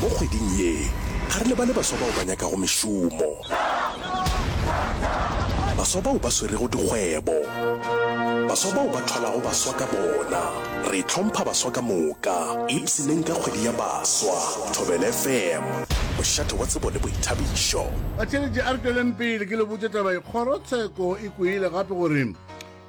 Mo kgweding ye, ga re lebale baswa bao ba nyakago mešomo, baswa bao ba swerego dikgwebo, baswa bao ba thwalago baswa ka bona. Re hlompha baswa ka moka, ipshineng ka kgwedi ya baswa. Thobela FM, mošate wa tsebo le boithabišo. Batheeletši a re tšweleng pele ke le botše taba ye. Kgorotsheko e kweile gape gore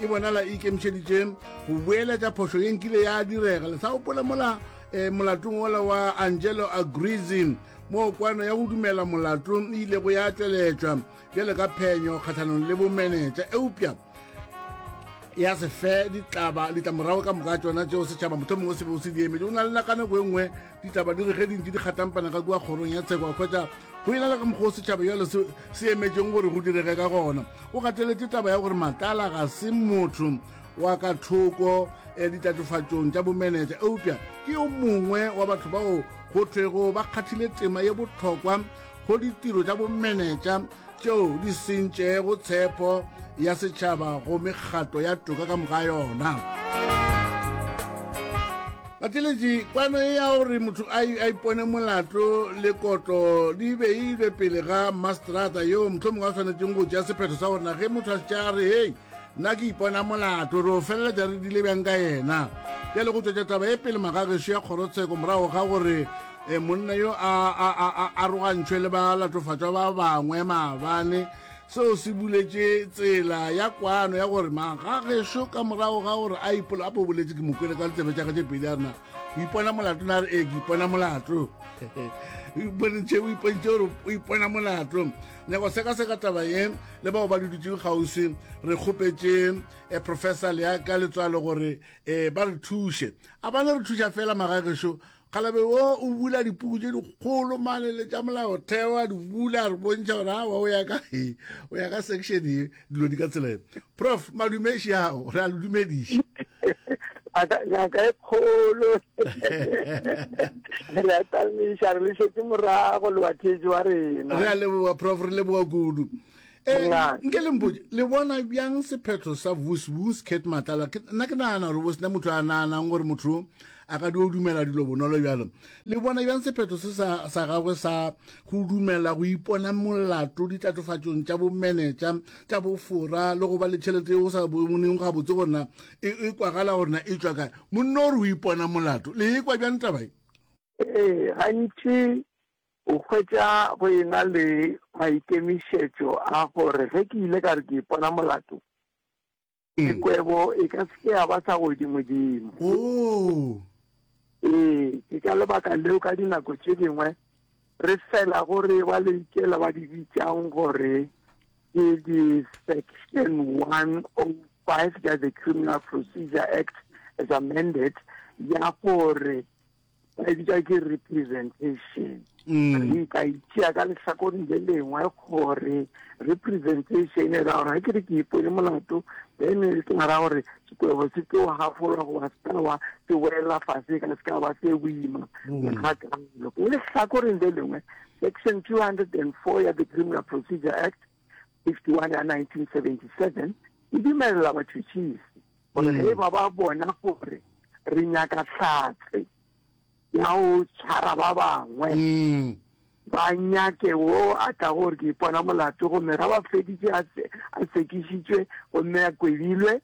e bonala e ikemišeditše go boeletša phošo ye nkile ya direga le sa opole mola um molatong ola wa angelo agrizin moo kwano ya go dumela molato e ilego ya tšweletšwa bjale ka phenyo kgatlhanong le bomenetša eupša ya se fe ditlamorago ka moka tšona tšeo setšhaba motlho mongwe se beo se di emedi o na le nakanako e nngwe ditaba di re ge dintši di kgatampana ka kua kgorong ya tsheko a kgwetsa go e na le ka mokgwa o setšhaba jalo se emetšeng gore go direge ka gona o gateletse taba ya gore matala ga se motho wa ka thoko eh, ditatofatsong tša bomenetša eupša ke yo mongwe wa batho bao go thwego ba kgathile tema ye botlhokwa go ditiro tša bomenetša tšeo di sentšego tshepo ya setšhaba go mekgatlo ya toka ka moka yona bateletši kwano e ya gore motho a ipone molato le kotlo di be e ile pele ga mastrata yo motlho mongwe a tshwanetseng go ja sephetho sa gorena ge motho a setša a re hei nna ke ipona molato re o feleletša re dile bjang ka yena bjale go tšwetša taba e pele magagešo ya kgorotsheko morago ga gore e monna yo a arogantšhwe le ba latofatšwa ba bangwe maabane seo se buletše tsela ya kwano ya gore magagešo ka morago ga gore a ipola a bo boletše ke mokwele ka letsebe tša gage pedi a rena o ipona molato na re ee ke ipona molato o ipontšhe gore o ipona molato nyako sekaseka taba ye le bao ba le dutšeng kgauswi re kgopetše um eh, professor leaka letswalo gore um ba re thuše a ba ne re thuša fela magagešo kgalabe wo o bula dipuku tše dikgolo mane le tša molaotheo a di bula re bontšha gore a wa o ya ka e o ya ka section e dilo di ka tsela prof madume šao re a le dumediša ngaka e kgolo re a tamiša re le šetse morago lewatheetso wa rena re a leboga prof re leboga kudu eh, nke lempotse le bona bjang sephetho sa vusvus cat matlala nna ke nagana gore bo sena motho a naganang gore motho A ka dio dumela dilo bonolo bjalo? Le bona bjang sephetho se sa, sa gagwe sa go dumela go ipona molato ditlatofatšong tša bomenetša, tša bofora, le go ba le tšhelete yeo o sa boneng gabotse gore na e, e kwagala gore na e tšwa kae. Monna o re o ipona molato. Le e kwa bjang taba ye? Ee, gantši o hwetša go e na le maikemišetšo a gore ge ke ile ka re ke ipona molato, Ee. Kwebo e ka se ke ya ba sa godimodimo. Oo! Ee, ke ka lebaka leo ka dinako tše dingwe re felago re eba le ikela ba di bitšang gore ke di-section 105 ya the criminal procedure act as amended ya gore ba e bitsa ke representation mm. ka itšea ka lehlakoreng le lengwe gore representation e ra gore ga ke re ke ipone molato then e ke ra gore sekwebo se ke wa gafolwa goba se ka wa se welela fase ka se ka ba se boima mm. ga kalo lehlakoreng le lengwe section two hundred and four ya the criminal procedure act 51 ya 1977 e dumelela batšhutšhisi gore ge ba ba bona gore re nyaka hlatse ya go tshwara ba bangwe mm. ba nyake wo a tla gore ke ipona molato gomme ga ba feditše a sekišitšwe gomme a kwebilwe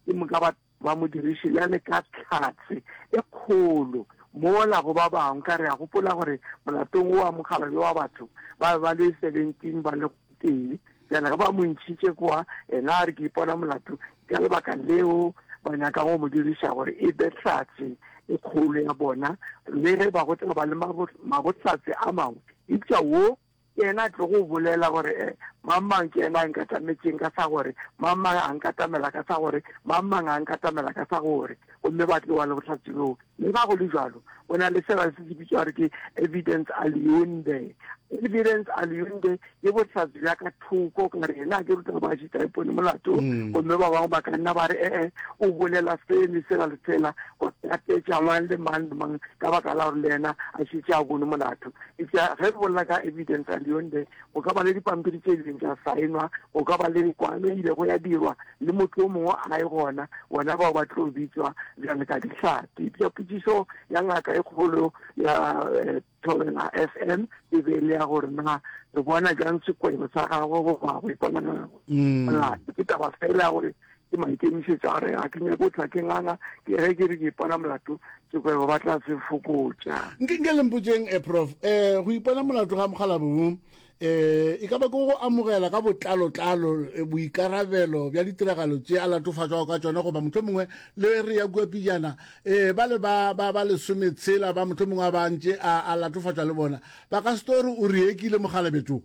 Ke moka ba ba mo diriše bjale ka tlhatse e kgolo mola go ba bangwe ka re a gopola gore molatong o wa mokgalabje wa batho ba be ba le 17 ba le tee bjale ge ba mo ntšhitše kwa ena a re ke ipona molato ka lebaka leo ba nyaka go mo diriša gore e be tlhatse e kgolo ya bona le ge ba go tla ba le mabotlatse a mangwe eupša wo Ke yena a tlogo go bolela gore eh, mang-mang ke yena a nkatametšeng ka sa gore, mang-mang a nkatamela ka sa gore, mang-mang a nkatamela ka sa gore, gomme ba tloga le bohlatse bjoo. Le fa go le bjalo, go na le sela se se bitšwa gore ke evidens aliunde. Evidens aliunde ke bohlatse bja ka thoko, ka re yena a ke ruta ba šitaepone molato, mm. gomme ba bangwe ba ka nna ba re ee, eh, eh, o bolela sele sela le sela, go tatetša mang le mang le mang ka baka la gore le yena a šitše a bone molato. Eupša ge re bolela ka evidence and yonde, go ka ba le dipampiri tše ileng tša saenwa, go ka ba le kwano e ilego ya dirwa le motho o mongwe a e gona, bona bao ba tlo bitswa bjale ka dihlatse. Eupša potšišo ya ngaka e kgolo ya eh, Thobela FM e be e le ya gore na re bona bjang sekwebo sa gagwe goba go iponagela mm. molato. Ke taba fela ya gore Ke maikemišetšo a re ga ke nyake go tla ke nganga, ke ge ke re ke ipona molato ke kwebo ba tla se fokotša. Nke, nke le mpotšeng eh, Prof. Eh, go ipona molato ga mokgalabje wo eh, e ka ba ke go amogela ka botlalo-tlalo eh, boikarabelo bja ditiragalo tše a latofatšwago ka tšona goba mohlomongwe le re ya kua pejana eh, ba le ba, ba, ba lesometshela ba mohlomongwe a ba ntše a, a latofatšwa le bona ba ka se tlo re o re ekile mokgalabje too?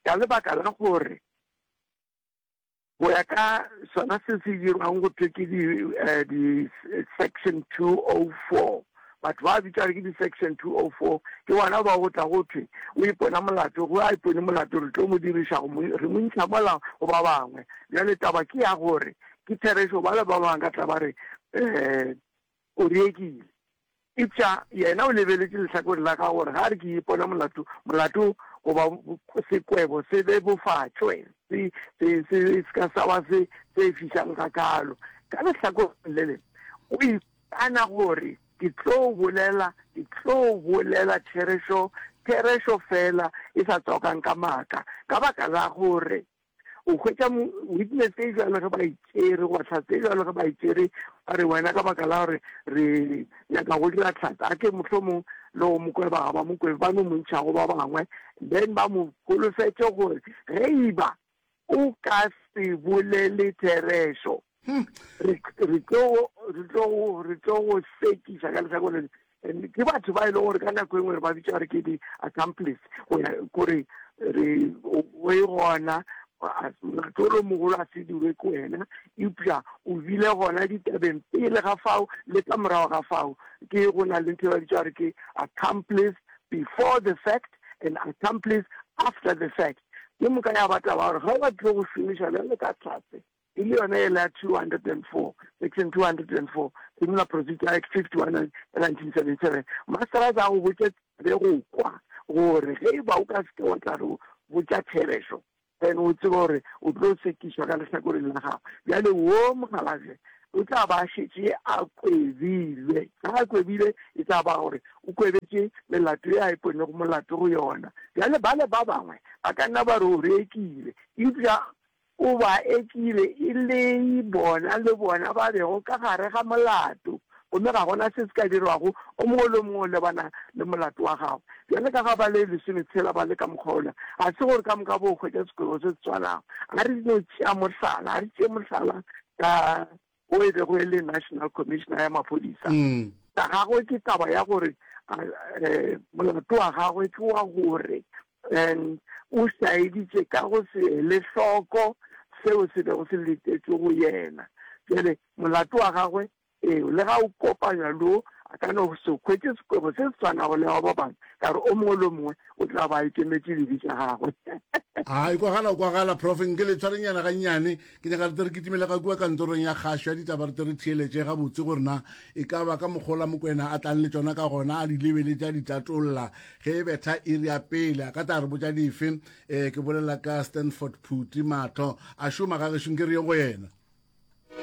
Ka lebaka la gore go ya ka sona se se dirwang go thwe ke di-section eh, two o oh four batho ba bitšare ke di-section two o oh four ke bona ba go tla go thwe o ipona molato go a ipone molato re tlo mo diriša re mo ntsha mola go ba bangwe bjale taba ke ya gore ke therešo ba le ba bangwe ka tla ba re um O riegile. Eupša yena o lebeletše lehlakoreng la gagwe gore ge a re ke ipona molato, molato goba sekwebo se bebofatšwe, se, se, se, se se ka sa ba se tšeifišang gakaalo. Ka lehlakoreng le lengwe, o ikana gore, Ke tlo bolela, ke tlo bolela therešo, therešo feela e sa tswakang ka maaka, ka baka la gore O hwetša mo, witness e jwalo ge ba e tšere, goba tlhatse e jwalo ge ba e tšere, ba re wena ka baka la gore re nyaka go dira tlhatse, a ke mohlomong le go mo kwe ba ga ba mo kwe, ba no mo ntšhago ba bangwe, then ba mo holofetše gore ge e ba o ka se bolele therešo, Hmm. Re re tlo re tlo re tlo go sekiša ka lesako le ke batho ba e leng gore ka nako e nngwe re ba bitsa gore ke di-accomplice go ya kore re o e gona matolo mogolo a se dirwe ke wena eupša o bile gona ditabeng pele ga fao le ka morago ga fao ke go na le ntho e ba bitsa gore ke accomplice before the fact and accomplice after the fact ke moka ya bataba gore ga o ba tlile go šomiša bjale ka tlase e le yona yela 204, Section 204, Criminal Procedure Act 51 ya 1977, Masterazi a go botša be go kwa gore ge e ba o ka se ke wa tla re botša therešo, then o tsebe gore o tlo sekišwa ka lehlakoreng la gago. Bjale wo mokgalabje o tla ba a šetše a kwebilwe. Ge a kwebile e tla ba gore o kwebetše melato ye a iponego molato go yona. Bjale bale ba bangwe ba ka nna ba re o rekile, eupša O ba ekile e le bona le bona ba bego ka gare ga molato, gomme ga go na se se ka dirwago, o mongwe le o mongwe o lebana le molato wa gagwe. Bjale ka ga ba le lesometshela ba le ka mokgwa wola, ga se gore ka moka bo hwetša sekwebo se se swanago. A re no tšea mohlala, a re tšee mohlala ka wo e bego e le National Commissioner ya Maphodisa, ya gagwe ke taba ya gore um molato wa gagwe ke wa gore um o saeditše ka go se ele hloko seo se bego se letetšwe go yena. Bjale molato wa gagwe ee le ga o kopanywa lo a ka no se hwetše sekwebo se se tshwanago le wa ba bangwe ka gore o mongwe le o mongwe o tla ba a ikemetše dibe tša gagwe. A e kwagala o kwagala prof nke le tshwarenyana gannyane Ke nyaka re tle re kitimele ka kua kantorong ya kgašo ya ditaba re tle re theeletše gabotse gore na e ka ba ka mokgola mokwena a tlang le tsona ka gona a di lebeletse a di tatolla ge e betha iri ya pele a ka tla re botša dife um ke bolela ka stanford phuti matlho a šoma ga gešong ke re ye go yena